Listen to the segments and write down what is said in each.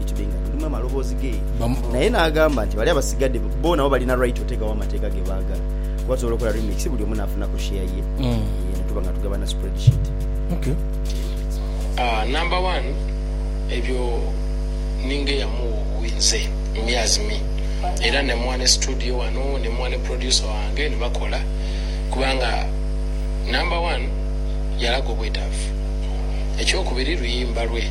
Itube nga tulimu amaloboozi ge. Naye n'agamba nti bali abasigadde bo nabo balina right otegawo amateeka ge baagala. Kuba tusobola okola remix buli omu n'afunaku share ye ne tuba nga tugabana spreadsheet. Number one ebyo ninga eyamugha obuwi nze me as me era nemugha ne studio ghano nemugha ne producer wange nebakola kubanga number one yalaga obwetaavu. Ekyokubiri luyimba lwe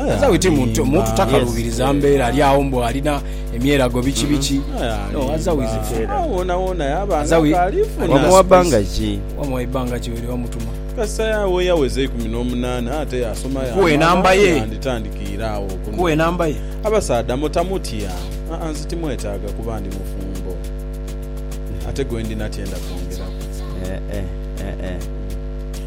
Omusawo ite muntu muntu takaluubiriza mbeera ali agho mbu alina emyerago biki biki. No as how is it fair? Agho wonawona yaba As a we- nga aliifuna. Wamuwa bbanga ki? Wamuwa ibbanga ki were wamutuma? Kasita ya- we yaweza eikumi n'omunaana ate yaasoma Nkuwe yaamala, enamba ye. yanditandikiire agho okunoonya. Nkuwe enamba ye. Abasaadha mutamutya. Aa nze timwetaaga kuba ndi mufumbo. Ate gwendi natyenda kwongeraku. Eh, eh, eh, eh.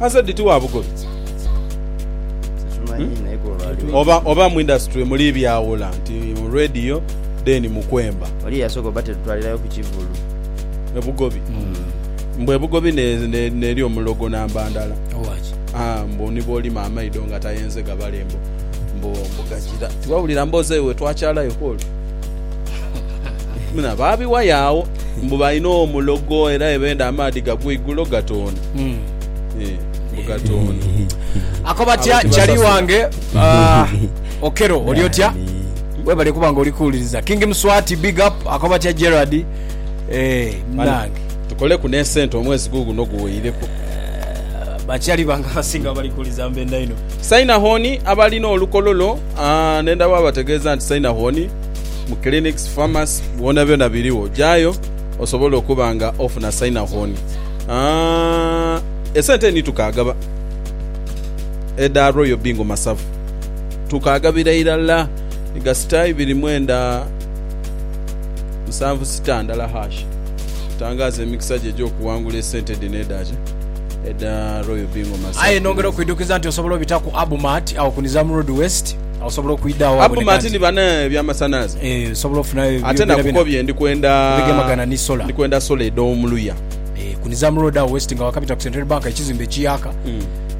Aze dhiti wa bugobi oba oba mu industry muli byawula nti mu radio then mu kwemba. Oli eyasoka oba tetutwalirayo ku kivulu. Ebugobi mbu ebugobi ne ne neri omulogo namba ndala haa mbu ni bwolima amaido nga tayenze gabale mbu mbu mbu gajira tiwawulira mboze we twakyalayo kwoli. Baabiwayo agho mbu balina omulogo era bwe beenda amaadhi gagwa eigulo gatoona. Ako batya chali wange Okello oli otya webale kuba nga oli kuwuliriza King Mswati big up ako batya Gerald eh munange tukoleku n'esente omwezi guuguno guweireku bakyali bange abasinga abali kuwuliriza mbenda inho. Saina hon abalina olukololo. Ne ndaba abategeeza nti sainahoni mu clinics, pharmacy byonabyona biriwo jayo osobole okuba nga ofuna sainahoni. Esente ni tukaagaba edha Royal Bingo Masavu tukaagabira irala ni gasita ibiri mwenda musanvu sita ndala hash. Tangaaza emikisa gyo egy'okuwangula esente dhino edha kye. Aye nongera okwidhukiza nti osobola obita ku Abumart agho ku Nizam Road West. Agho osobola okwidha agho waboneka Abumart nti ni bana eby'amasanhalaze. eh, osobola ofunayo ebyo Ate byonabyona nakukobye ndi kwenda ebigemagana ni solar. ndi kwenda solar edh'omu luya. Eh, ku Nizam Road agho West nga wakabita ku Centenary Bank ekizimbe ekiyaaka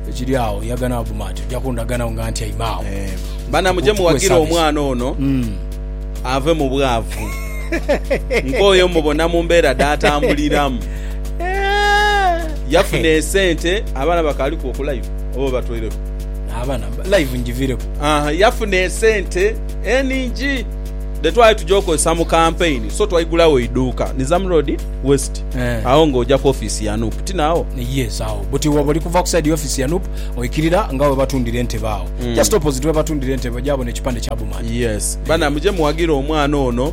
ekiri agho yaga ni Abumart ojja kundaga nagho nga ntyaime agho. Eh, bana muje Mutuwe muwagire service. omwana ono ave mu bwavu. Nkooye omubona mu mbeera dhaatambuliramu. Yafuna esente abaana bakaaliku okulayo oba obatwaireku? Abaana live njivireku. Aha, yafuna esente eningi dhe twali tuja okozesa mu kampeyini, so twaigulawo eiduuka Nizam Road West eh. agho ng'oja ku ofiisi ya nup. Ti naagho? Yes, agho buti bwoba oli kuva ku sayidi y'ofiisi ya nup oikirira nga webatundira entebe agho. Just opposite webatundira entebe oja bona ekipande kya Bumande. Yes. Bana muje muwagire omwana ono.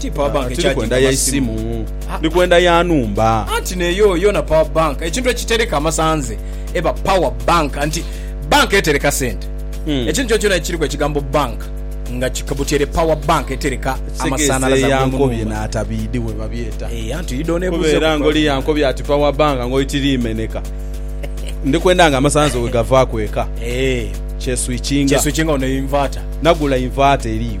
Ti power bank Tiri kwenda ekyajinga ya masimu. isimu. Ndi kwenda ya nhumba. Anti neyo yona power bank ekintu ekitereka amasanze eba power bank anti bank etereka sente Hmm. ekintu kyonakyona ekiriku ekigambo bank nga kikabutyere power bank etereka Ekitegeza amasanalaze eya ag'omu nkobye nhumba. n'atabiidhi bwe babyeta. Eeh anti oidha Kuba onebuuza era ku ngoli ya power nkobye ati power bank ngoli tiriimeneka. Ndi kwenda nga amasanze bwe gavaaku eka. Eeh Kyeswikinga. kyeswikinga ono inverter. Nagula inverter eriyo.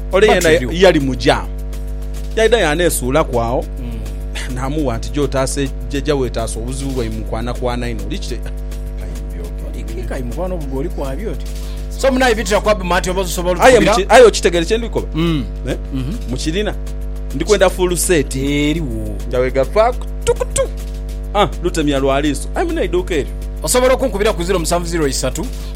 Ole yena yali mu jaamu, yaidha yaaneesuulaku agho. Naamuwa nti, Gy'otaase jaja weetaase obuzibu bwaime mu kwanakwana inho. Oli kite? Aye okitegeere kye ndi kukoba? Mukirina? Ndi kwenda fuulu seeti. Jawega faaku tukutu. Lutemya lwa liiso. Aye muno eiduuka eryo.